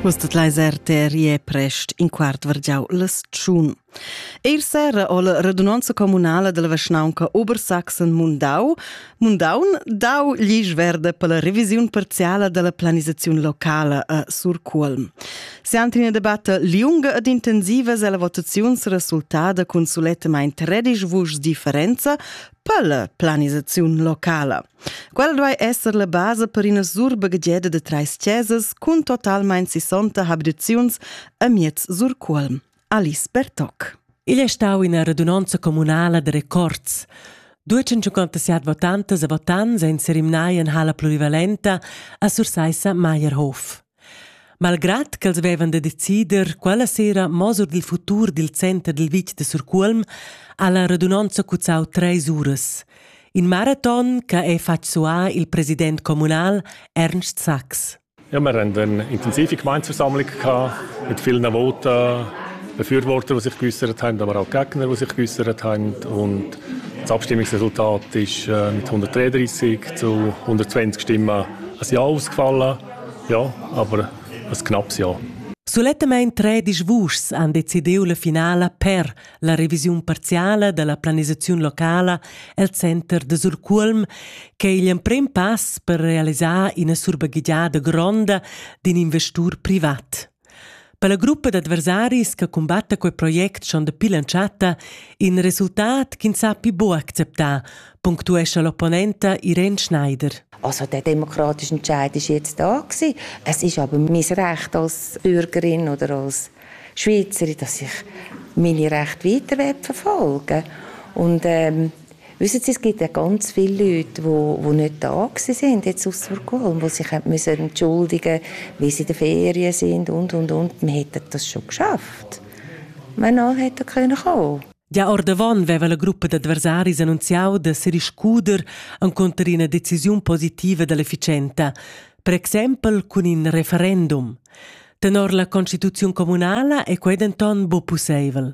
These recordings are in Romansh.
Vus tot leis RTR e prest in quart vargiau las tschun. Eir sera ho la radunanza comunala della Vaschnaunca Obersachsen-Mundau Mundaun dau glisch verde per la revisiun parziala della planisaziun locala a Surcuolm. Se ante una debatta liunga ed intensiva se la votaziun se resultada con sulettamain 13 vuschs differenza per la planisaziun locala. Quel duai esser la basa per ina surbaghegiada da trais chesas cun totalmain 60 abitaziuns amiez Surcuolm. Alice Bertoc. Igl è stau ina radunonza communala da records. 257 votantas e votants ein serimnai en hala polivalenta a Sursaissa Meierhof. Malgrad ch'els vevan da decider quella sera mo sur dil futur dil center dil vitg de Surcuolm, ha la radunonza cuzzau treis uras. In maraton che ha fatg suar il president communal Ernst Sachs. Ja, wir hatten eine intensive Gemeindeversammlung mit vielen Voten, Befürwortern, die sich geäußert haben, aber auch Gegner, die sich geäußert haben. Und das Abstimmungsresultat ist äh, mit 133 zu 120 Stimmen ein Ja ausgefallen. Ja, aber ein knappes Jahr. Sulettamain tredisch vuschs han decidiu la finala per la revisiun parziala dalla planisaziun locala el center de Surcuolm, che è igl emprem pass per realisar ina surbaghegiada gronda d'in investur privat. Per la gruppa d'adversaris che cumbatta quei project schon dapi l'entschatta in resultat ch'ins ha pli buc acceptà, punctuescha l'opponenta Irene Schneider. Also der demokratische Entscheid ist jetzt da gewesen. Es ist aber mein Recht als Bürgerin oder als Schweizerin, dass ich meine Rechte weiter verfolgen will. Und ähm, Wissen Sie, es gibt ja ganz viele Leute, die, die nicht da waren jetzt aus Burgholm, die sich müssen entschuldigen müssen, weil sie in den Ferien sind und, und, und. Man hätte das schon geschafft. Wenn hat er können kommen Già ordavon veva la gruppa d'adversaris annunziau da seriscuder encunter ina decisiun positiva dell'efficienza, per exempel cun in referendum. Tenor la constituziun communala è quei denton buc pusseivel.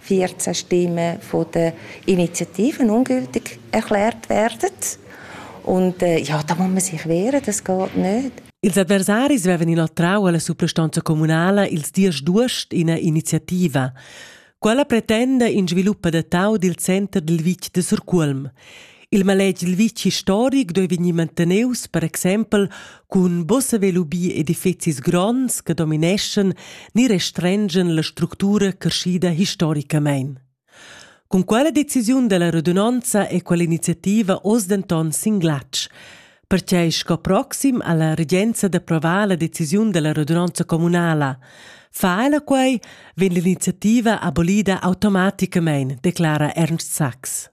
14 Stimmen von den Initiativen ungültig erklärt werden. Und äh, ja, da muss man sich wehren, das geht nicht. Ils adversaris vevan inoltrau alla suprastanza communala ils dies d'uost ina iniziativa. Quella pretenda in sviluppa da tau dil center dil vitg de Surculm. Il maletg il vitg historic doi vegnir manteneus, per exempel, cun bossa velubi edifizis gronds che domineschan ni restrengen la structura crescida historicamain. Con quella decisiun della radunanza e quell'iniziativa oz denton sin glatsch, perché sco proxim alla regenza d'approvar la decisiun della radunanza comunala. Fa ella quei, vegn l'iniziativa abolida automaticamain, declara Ernst Sachs.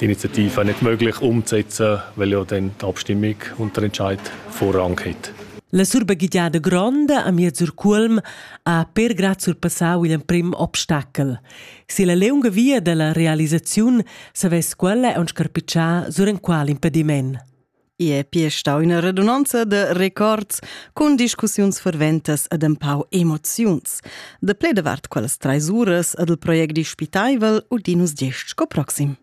Die Initiative nicht möglich umzusetzen, weil ja dann die Abstimmung unter Entscheid Vorrang hat. La surbagigliada gronda a miez sur Culm ha per grad surpassau igl emprim obstacel. Si la leunga via dalla realisaziun savess quella aunc scarpitschar sur en qual impediment. I è pia stau una redunanza de records cun discussiuns ferventas ed empau emoziuns. De ple davart quellas treis uras ed il project dispitaivel udinus gest sco proxim.